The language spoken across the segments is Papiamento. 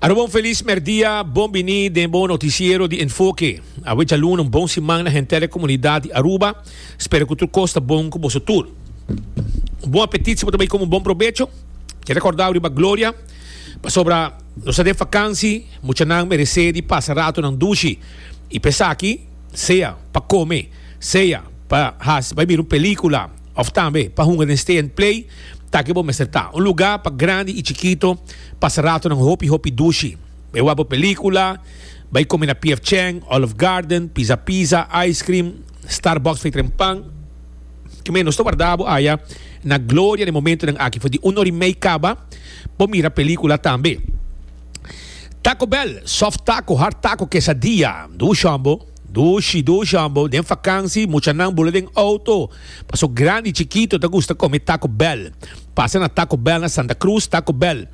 Aroba un feliz merdia, bon bini den bon noticiero di Enfoque. Awe chalun un bon siman na henter comunidad di Aruba. Spero cu tur cos ta bon cu boso tur. Un bon apetit si bo ta bay como un bon probecho. Te recordao riba gloria. Pasobra nos den vakansi, muchanan merece di pasa ratonan dushi. Y pesaki, sea pa come, sea pa haci, bay mira un pelicula, Of tambe pa hunga den stay and play ta ke bo mester ta. Un lugá pa grandi i chikito pasa ratonan hopi hopi dushi. Bai wak bo pelíkula, bai kome na PF Chang, Olive Garden, Pizza Pizza, ice cream, Starbucks fei tren pan. Kemey nos ta warda bo aya na gloria den momentonan aki for di un or i mei kaba bo mira pelíkula tambe. Taco Bell, soft taco, hard taco, quesadilla, dushi ombo. Dushi, dushi hombo, den fakansi muchanan bula den outo, paso grandi i chikito ta gusta kome Taco Bell. Pasa na Taco Bell na Santa Cruz, Taco Bell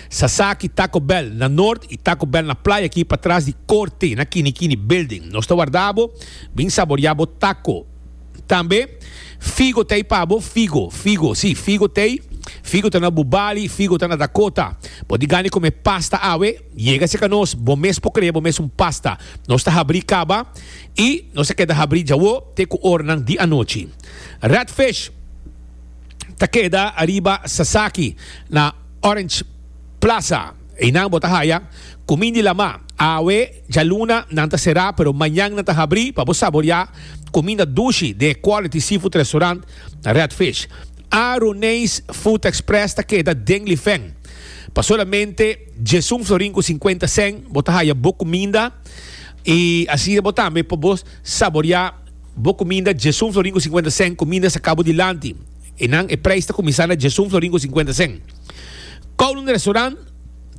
Sasaki, Taco Bell na Noord i Taco Bell na Playa aki patras di Korte na Kini Kini Building. Nos ta warda bo bin saboriá bo taco. Tambe Figo t'ei pa bo, Figo, Figo, si, Figo t'ei, Figo ta na Bubali, Figo ta na Dakota. Bo di gana di kome pasta awe? Yega cerca nos, bo mes por crea bo mes un pasta. Nos ta habri caba y nos a keda habri djawo te cu oranan di anochi. Rat Fish ta keda ariba Sasaki na Orange Plaza. Einan bo ta haya Cumin di Lama. Awe djaluna nan ta cera pero mañan nan ta habri pa bo saboria cuminda dushi den e quality seafood restaurant Rat Fish. Aroneis Food Express ta keda den Lifen pa solamente. Djes un florin cu cincuenta cen, bo ta haya bo cuminda, y asina bo tambe por bo saborea bo cuminda. Djes un florin cu cincuenta cen, cuminda saca bo dilanti. E nan e prijs ta cuminsa na djes un florin cu cincuenta cen. Kowloon Restaurant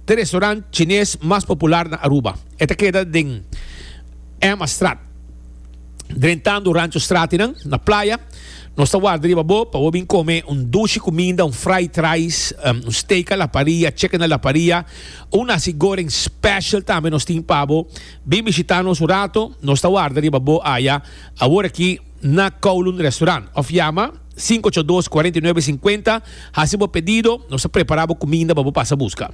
ta e restaurant chines mas popular na Aruba. E ta keda den Emmastraat. Drentando Rancho Stratinan na playa. Nos ta warda riba bo pa bo bin come un dushi cuminda, un fried rice, um, un steak a la paria, chicken a la paria, un nasi goreng special tambe nos tin pa bo. Bin bishita nos un rato, nos ta warda riba bo aya, awor aki na Kowloon Restaurant. Of yama. Sinku ocho dos, kuarenta i nuebe, sinkuenta, Hasi bo pedido, nos ta prepará bo kuminda pa bo pasa buska.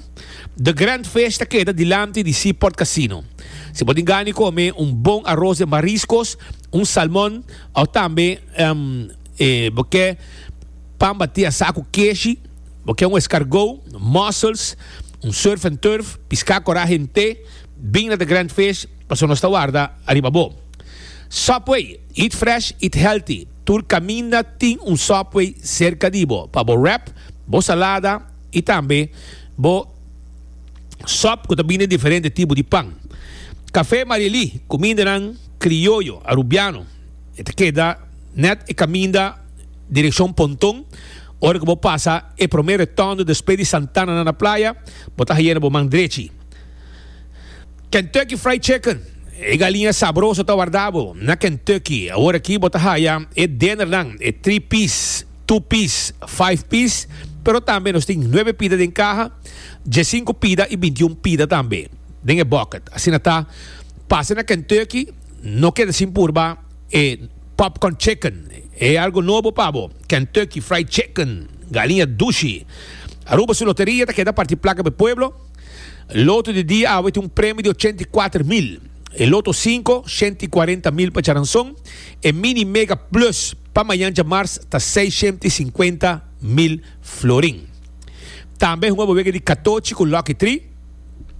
The Grand Fish ta keda dilanti di Sea Port Casino. Si bo tin gana di kome un bon aros den mariskos, un salmon, òf tambe bo ke pan batí asá ku keshi, bo ke un eskargou, mussels, un surf and turf, piská koraje en te, bing na The Grand Fish, pasobra nos ta warda ariba bo. Subway, Eat fresh, eat healthy. Tur caminda tin un subway cerca di bo pa bo wrap bo salada y tambe bo sop cu ta bini den diferente tipo di pan. Cafe Marieli, cumindanan crioyo Arubiano, e ta keda net e caminda direccion Ponton. Ora cu bo pasa e prome retondo despues di Santana na na playa, bo ta haya na bo man drechi. Kentucky Fried Chicken, E galiña sabroso ta warda bo na Kentucky. Awor aki bo ta haya e dinnernan, e three piece, two piece, five piece, pero tambe nos tin nuebe pida den kaha, diesinco pida i bintiun pida tambe den e bucket. Asina ta, pasa na Kentucky no keda sin purba e Popcorn Chicken. E algo nobo pa bo, Kentucky Fried Chicken, galiña dushi. Aruba su loteria ta keda parti plaka pa e pueblo. Loto di dia awe tin un premio di ochenta i kuater mil, e loto sinku, shenta i kuarenta mil pa Charanson, e mini mega plus pa mañan djamars ta seishenta i sinkuenta mil florin. Tambe hunga bo wega di katochi ku Lucky Tree.